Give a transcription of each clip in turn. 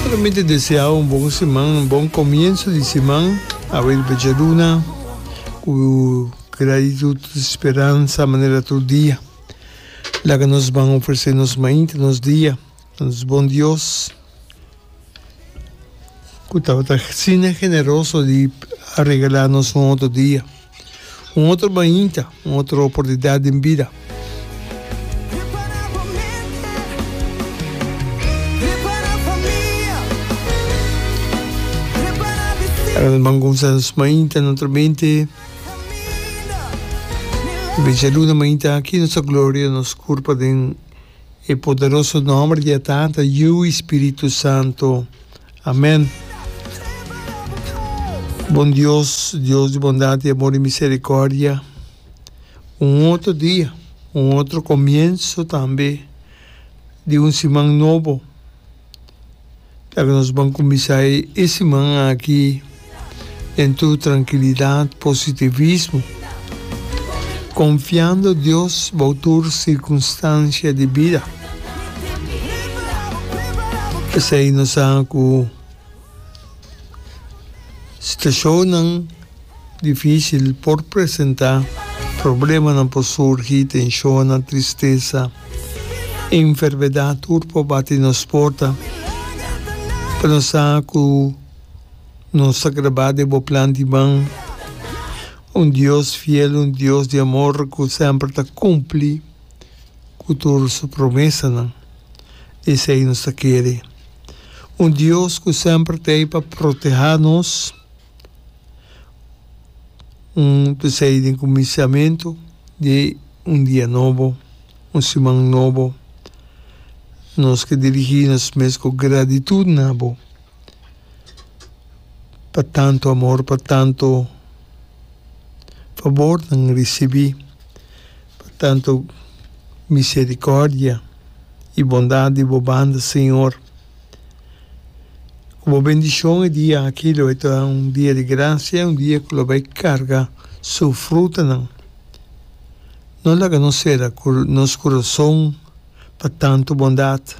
Bueno mi ta deseao un bon siman un bon comienso di siman awe di bechaduna cu gratitud speransa manera tur dia laga nos ban ofrece nos mainta nos dia nos bon Dios cu tabata sina generoso di regala nos un otro dia. Un otro bainta, un otro oportunidat den bida. Awe nos ban kumsa nos mainta na otro mente. Bencha luna mainta aki nos ta gloria nos kurpa den e poderoso nomber di a Tata, Yu i Spiritu Santo. Amen. Bon Dios, Dios di bondad y amor y misericordia, un otro dia, un otro comienzo tambe di un siman nobo. Taki nos ban cuminsa e siman aki. Entu trankilidat, positivismo, konfiando Dios bou tur sirkunstansia di bida. P'esei nos sa ku situashonnan difísil por presentá, problemanan por surgi, tenshonnan, tristesa, enfermedat tur por bati nos porta. Pero nos sa ku. Nos ta grabá den bo plan di man, un Dios fiel, un Dios di amor cu semper ta cumpli cu tur su promesanan. Esei nos ta kere. Un Dios cu semper ta ei pa protehá nos, un p'esei den cuminsamentu di un dia nobo, un siman nobo, nos ke dirigí nos mes cu gratitut na bo. pa tantu amor, pa tantu fabornan risibí, pa tantu miserikòrdia i bondat di bo banda, señor. Ku bo bendishon e dia aki lo bai ta un dia di grasia, un dia ku lo bai karga su frutanan. No laga nos sera nos kurason. pa tantu bondat,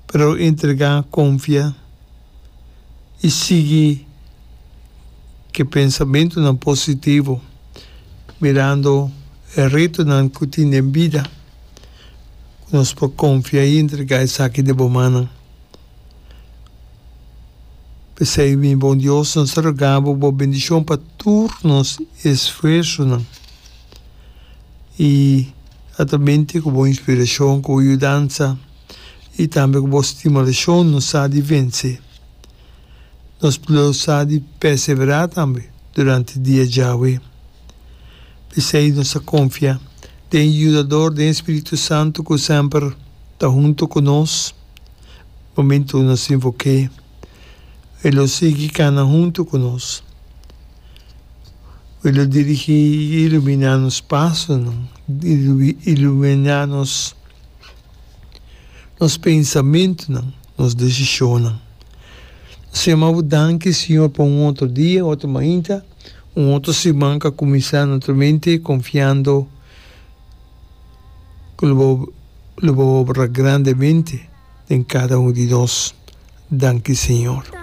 pero entrega konfia i sigui ke pensamentunan positivo mirando e retonan ku tin den bida ku nos por konfia i entrega esaki den bo mannan. P'esei mi bon Dios, nos ta roga bo, bo bendishon pa tur nos esfuersonan. i a ta binte ku bo inspirashon, ku bo yudansa i tambe ku bo stimulashon nos sa di vense. Nos lo sa di perseverá tambe durante dia djawe. P'esei nos ta konfia den e yudador, den e spiritu santu ku semper ta huntu ku nos momentu nos invok'é. E lo sigui kana huntu ku nos. Cu lo dirigi y ilumina nos pasonan, ilumina nos nos pensamentonan, nos decisionnan. Nos ta yama Bo danki, Señor, pa un otro dia, otro mainta, un otro siman cu a cuminsa nutramente, confiando cu Lo bo Lo bo obra grandemente den cada un di nos. Danki, Señor.